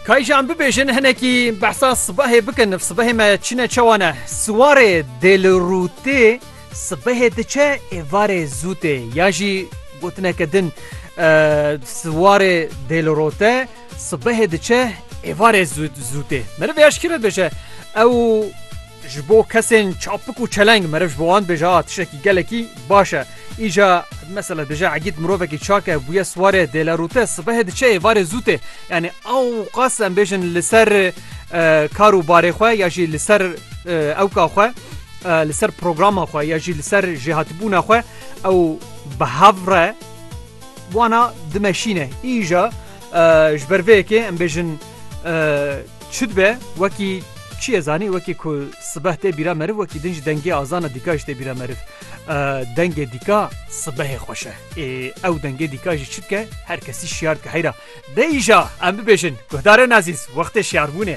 Kayjan bibêjin hinekî behsa sibehê bikin ev sibehê me çine çewane siwarê dêlirûtê sibehê diçe êvarê zûtê ya jî gotineke din siwarê dêlirote sibehê diçe êvarê zûtê meriv ya şikî re dibêje ew Ji bo kesên çapik û çeleng meriv ji bo wan dibêje a tiştekî gelekî baş e. Îja mesela dije egîd mirovekî çak e bûye siwarê dêle rûte sibehê diçe êvarê zû tê. Yanî ewqas em bêjin li ser kar û barê xwe ya jî li ser ewka xwe li ser programa xwe ya jî li ser jêhatibûna xwe ew bi hev re wana dimeşîne îja Ji ber vê yekê em bêjin çi dibe wekî çi ye zanî wekî ku sibeh tê bîra meriv wekî din jî dengê azana dîka jî tê bîra meriv. Dengê dîka sibehê xweş e. Ê ew dengê dîka jî çi dike her kesî şiyar dike heyra. Dê îja em bibêjin guhdarên ezîz wextê şiyarbûnê.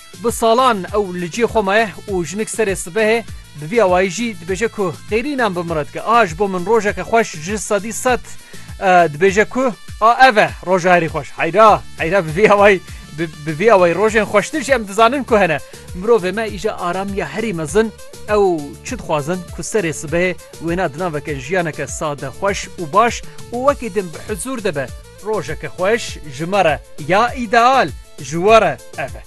Bi salan ew li cihê xwe maye û jinik serê sibehê bi vî awayî jî dibêje ku qîrînan bi min re dike. A ji bo min rojeke xweş ji sedî sed dibêje ku a ev e roja herî xweş. Heyra heyra bi vî awayî bi vî awayî rojên xweştir jî em dizanin ku hene. Mirovê me îja aramiya herî mezin ew çi dixwazin ku serê sibehê wêna di naveke jiyaneke sade xweş û baş û wekî din bi huzûr de be. Rojeke xweş ji me re ya îdeal ji we re ev e.